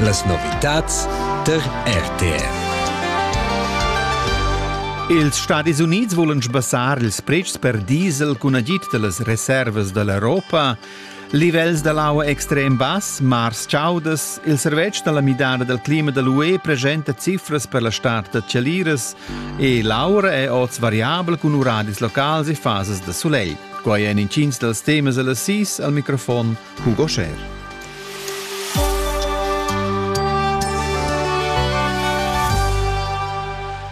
Las novitads der RTR. Ils Stadis Unids volan sbassar ils pretschs per diesel cun agid da las reservas da l'Europa. Livels da l'aua extrem bass, mars chaudas, il servetsch da la midada dal clima da l'UE presenta cifras per la start da chaliras e l'aura è oz variabel cun uradis locals e fasas da sulegl. Quai èn intgins dals temas a las sis al microfon cun Goscher.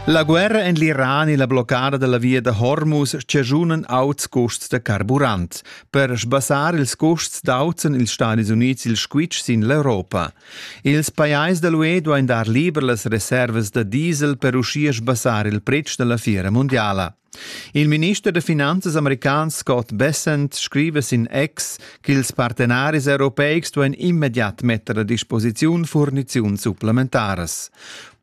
La guerra en l'Iran e la bloccada della via da Hormuz schazunan auts custs da carburant. Per sbassar ils custs dauzen ils Stati Units il squitsch sin l'Europa. Ils pajais dell'UE duain dar liber las reservas da diesel per uschia sbassar il pretsch della fiera mondiala. Il minister da finanzas american Scott Bessent scriva sin ex ch'ils partenaris europeics duain immediat metter a disposiziun furniziuns supplementaras.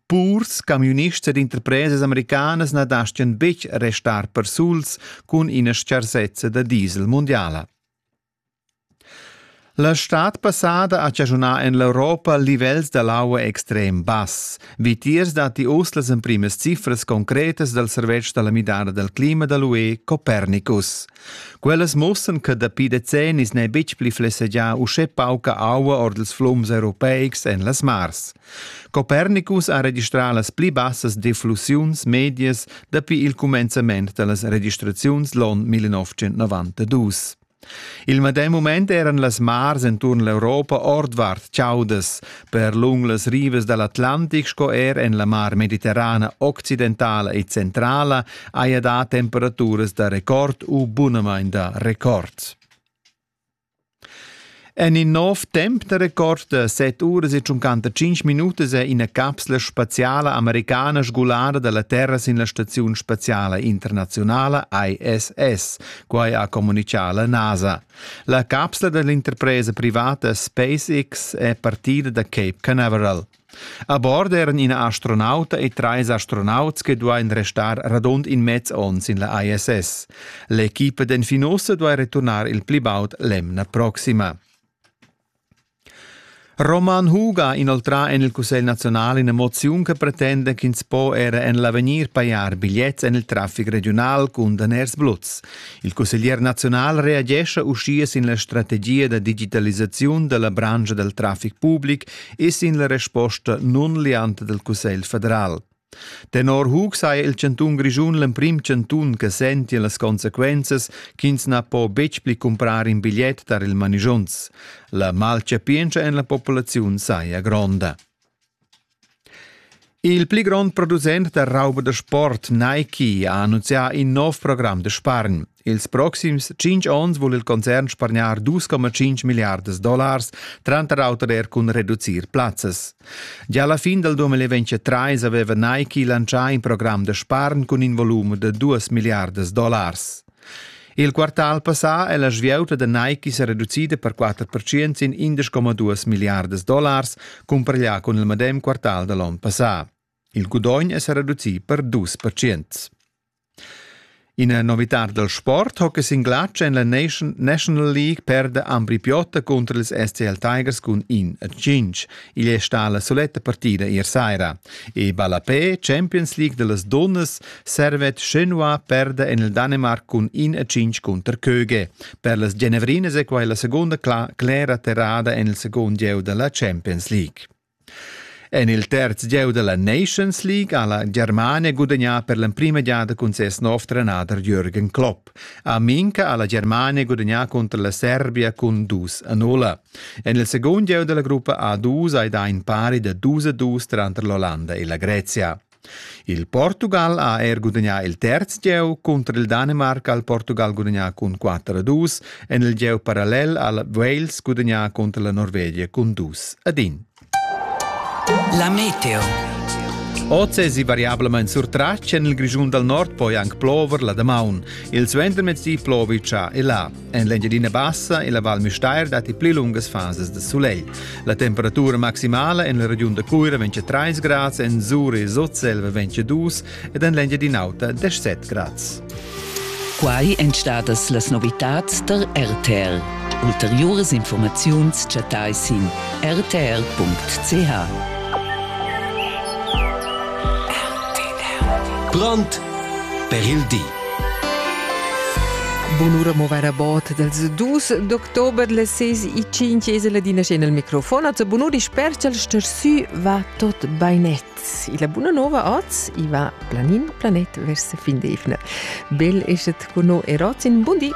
Purs, camiunists ed interpresas americanas na dastgan betg restar persuls cun ina stgarsezza da diesel mundiala. La stad passada ha chaschunà en l'Europa livels da l'aua extrem bass. Vitiers datti uss las emprimas cifras concretas dal servetsch da la midada dal clima da l'UE Copernicus. Quellas mussan che dapi decennis n'è betg pli flessegià uschè pauca aua ord ils flums europeics en las mars. Copernicus ha registrà las pli bassas deflussiuns medias dapi il cumenzament da las registraziuns l'on 1992. Il medem mument eran las mars enturn l'Europa ordvart chaudas, per lung las rivas dal Atlantic sco er en la mar mediterrana occidentala e centrala haja dà temperaturas da record u bunamain da record. En in nov temp da record set uras e 55 minutas è ina capsla spaziala americana sgulada da la terra sin la staziun spaziala internazionala ISS. Quai ha communitgà la NASA. La capsla da l'interpresa privata SpaceX è partida da Cape Canaveral. A bord eran ina astronauta e trais astronauts che duain restar radund in mez onn sin la ISS. L'equipa d'Enfinosa duai returnar il pli baud l'emna proxima. Roman Huga ha inoltrà en il Cussegl nazional ina moziun che pretenda ch'ins po era en l'avegnir pajar bigliets en il traffic regiunal cun daners bluts. Il cusseglier nazional reagescha uschia sin la strategia da digitalisaziun dalla branscha dal traffic public e sin la resposta non lianta del Cussegl federal. Tenor Hug sai il cantun Grischun l'emprim cantun che senti las consequences ch'ins na po betg pli comprar in bigliet tar il manigiunz. La malcapientscha en la popolaziun saja gronda. Il pli grond producent da rauba da sport Nike ha annunzià in nov program da spargn. Ils proxims tschinch ons vul il concern spargnar 2,5 milliardas dollars, tranter auter er cun reducir plazzas. Gia la fin del 2023 aveva Nike lancià in program da spargn cun in volum da 2 milliardas dollars. Il quartal passà è la svieuta da Nike se reducida per 4% in 11,2 milliardas dollars compareglià con il medem quartal da l'on passà. Il gudogn è se reducì per 2%. Ina novitad dal sport hockey sin glatsch en la National League perda Ambri Piotta cunter ils STL Tigers cun in a cinc. Igl è stà la soletta partida ier saira. E ballapé, Champions League da las dunnas, Servet Chenois perda en il Danemarc cun in a cinc cunter Köge. Per las Genevrinas è quai la segunda clera terrada en il segund gieu da la Champions League. En il terz gieu da la Nations League ha la Germania gudagnà per l'emprima giada cun ses nov trenader Jürgen Klopp. A Minca ha la Germania gudagnà cunter la Serbia cun 2 a 0. En il segund gieu da la gruppa A2 hai dà in pari da 2 a 2 tranter l'Olanda e la Grezia. Il Portugal ha er gudagnà il terz gieu cunter il Danimarc ha il Portugal gudagnà cun 4-2 en il gieu parallel ha Wales gudagnà cunter la Norvegia cun 2-1. La meteo. Oz èsi variablamain surtratg en il Grischun dal Nord poi anc plover la damaun. Il suentermezdi plovi cha e là. En l'Engiadina Bassa e la Val Müstair datti pli lungas fasas da sulegl. La temperatura maximala en la regiun da Cuira vegn 3 grads, en Zuri e Sotselva vegn 2 ed en l'Engiadina Auta 17 grads. Quai èn stadas las novitads da RTR. Ulteriuras informaziuns chattai sin rtr.ch. Brand per il di. Bunura movera bot dels dus d'october le seis e cinc es la dina scena al microfon. Az bunuri sper ch'el stersü va tot bainet. E la buna nova oz i va planin planet vers fin d'evna. Bel eschet con no erotin. Bundi!